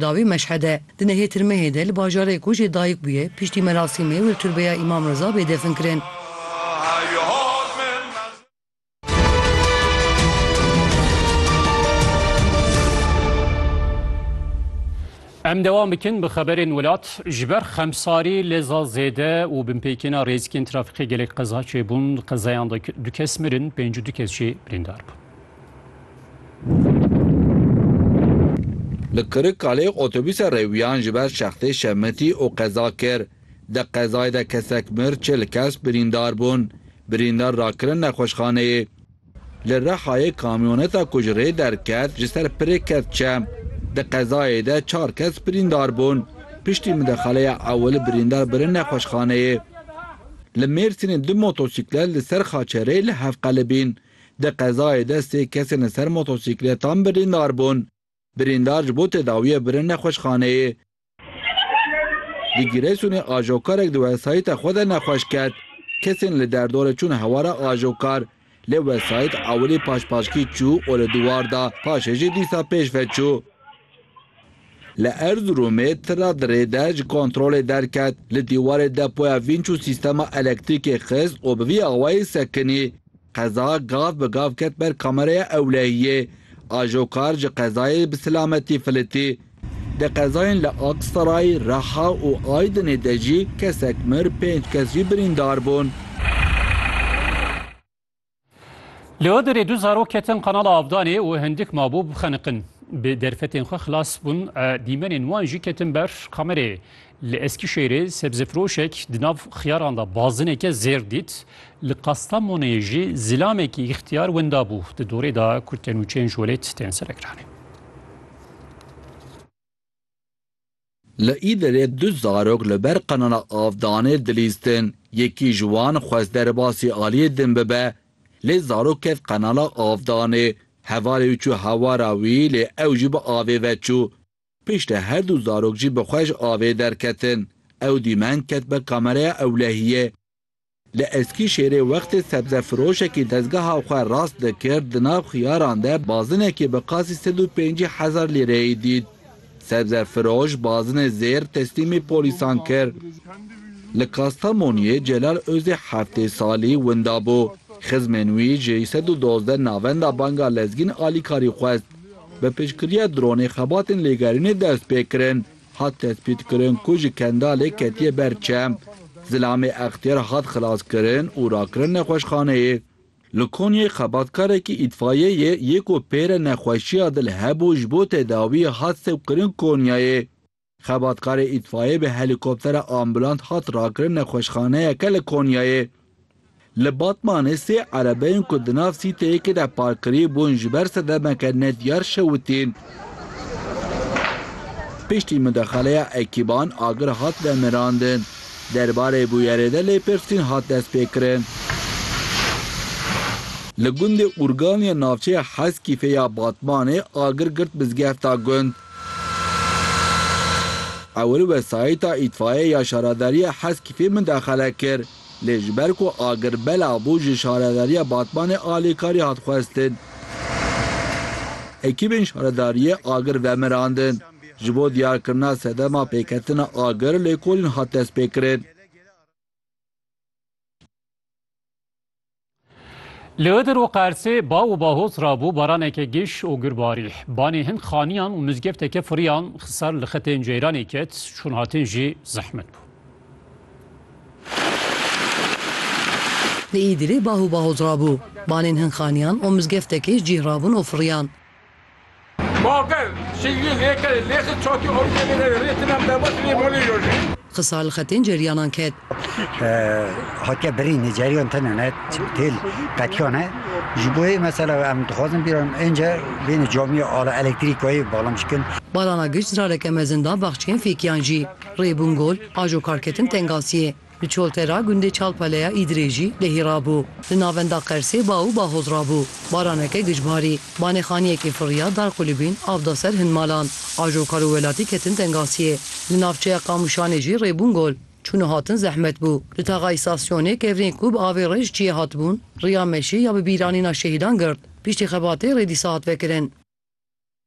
Dawî Meşhede, di nehê Tirmehê de li bajarê ku jê dayik bûye, piştî merasîmê wir tirbeya Îmam Riza bê defin kirin. Em dewam bikin bi xeberên welat. Ji ber xemsarî, leza zêde û binpêkêna rêzikên trafîkê gelek qeza çêbûn. Di qezayan de du kes mirin, pêncî du kes jî birîndar bûn. Li Kirikkalê otobûsa rewîyan ji ber şextê şemitî û qeza kir. Di qezayê de kesek mir, çil kes birîndar bûn. Birîndar rakirin nexweşxaneyê. Li Rihayê kamyoneta ku ji rê derket ji ser pirê ket çem. Di qezayê de çar kes birîndar bûn. Piştî midexaleya ewil birîndar birin nexweşxaneyê. Li Mêrsînê du motosîklet li ser Xaçerê li hev qelibîn. Di qezayê de sê kesên li ser motosîkletan birîndar bûn. Birîndar ji bo tedawiyê birin nexweşxaneyê. Di Giresunê ajokarek di wesayîta xwe de nexweş ket. Kesên li derdorê çûn hewara ajokar. Lê wesayît ewilî paşpaşkî çû û li dûwar da, paşê jî dîsa pêşve çû. Li Erziromê tira dirê de ji kontrolê derket, li dîwarê depoya vînç û sîstema elektrîkê xist û bi vî awayî sekinî. Qeza gav bi gav ket ber kameraya ewlehiyê. Ajokar ji qezayê bi silametî filitî. Di qezayên li Aksaray, Reha û Aydinê de jî kesek mir, pênc kes jî birîndar bûn. Li Idirê du zarok ketin qanala Abdanê û hindik mabû bixeniqin. Bi derfetên xwe xilas bûn, dîmenên wan jî ketin ber kamerê. Li Eskîşehîrê sebzefiroşek di nav xiyaran de bazineke zêr dît. Li Kastamonê jî zilamekî îxtiyar winda bû. Di dorê de ku tenûçeyên ji welêt tên serekiranê. Li Îdirê du zarok li ber qanûna avdanê dilîstin. Yekî ji wan xwest derbasî aliyê din bibe, lê zarok ket qenala avdanê. Hevalê wî çû hewara wî, lê ew jî bi avê ve çû. Piştre her du zarok jî bi xwe ji avê derketin. Ew dîmen ket be kameraya ewlehiyê. Li Eskîşêrê wextê sebzefirojekî dezgeha xwe rast dikir di nav xiyaran de bazinekî bi qasî sed û pêncî hezar lîreyê dît. Sebzefiroj bazinê zêr teslîmî polîsan kir. Li Kastamoniyê Celal Ozê heftê salî winda bû. Xizmên wî ji sed û dozdeh navenda banga lezgîn alîkarî xwest. Bi piştgiriya dronê xebatên lêgerînê dest pê kirin. Hat tespîtkirin ku ji Kendalê ketiye ber çem. Zilamê Extiyar hat xilaskirin û rakirin nexweşxaneyê. Li Konyayê xebatkarekî îtfayeyê yê ku pêre nexweşiya dil hebû ji bo tedawiyê hat sewqkirin Konyayê. Xebatkarê îtfayê bi helîkoptera ambulant hat rakirin nexweşxaneyeke li Konyayê. Li Batmanê sê erebeyên ku di nav sîteyekê de park kirî bûn ji ber sedemeke nediyar şewitîn. Piştî mudexeleya ekîban agir hat vemirandin. Derbarê bûyerê de lêpirsîn hat destpêkirin. Li gundê Urgan ya navçeya Heskîfê ya Batmanê agir girt mizgefta gund. Ewil wesayîta îtfaiye ya şaradariya Heskîfê mudexele kir. Lê ji ber ku agir belav bû ji Şaredariya Batmanê alîkarî hat xwestin. Ekîbên şaredariyê agir vemirandin. Ji bo diyarkirina sedema pêketina agir lêkolîn hat destpêkirin. Li Idir û Qersê baw û bahoz rabû baraneke giş û gur barî. Banê hin xaniyan û mizgefteke furiyan ser li xetên ceyranê ket, çûnhatin jî zehmet bû. Li Îdirê bah û bahoz rabû. Banên hin xaniyan û mizgeftekê cîh rabûn û furiyan. Baver, şîngî lê kerê, lê xi çatî orîyê lê nêrê, rê tinem deba tilê molê yojî. Xisal xetên ceryanan ket. Hatiye birîn e, ceryan tune ne, têl qetiyan e. Ji bo yê mesela em dixwazin bîran ênce bêne camiya ala elektrîkayê balam çikin. Barana giş zirareke mezin da baxçeyên fêkiyan jî. Rê bûn gol, ajo karketin tengasiyê. Bi çolte ra gundê Çalpaleya Îdirê jî lehî rabû. Li navenda Qersê ba û bahoz rabû. Baraneke gij barî. Banêxaniyekê firiya dar qulibîn av da ser hin malan. Ajokar û welatî ketin tengasiyê. Li navçeya Qamûşanê jî rê bûn gol. Çûn û hatin zehmet bû. Li taxa îstasyonê kevirên ku bi avê rê ji çiyê hatibûn, riya meşê ya bi bîranîna şehîdan girt. Piştî xebatê rê dîsa hat vekirin.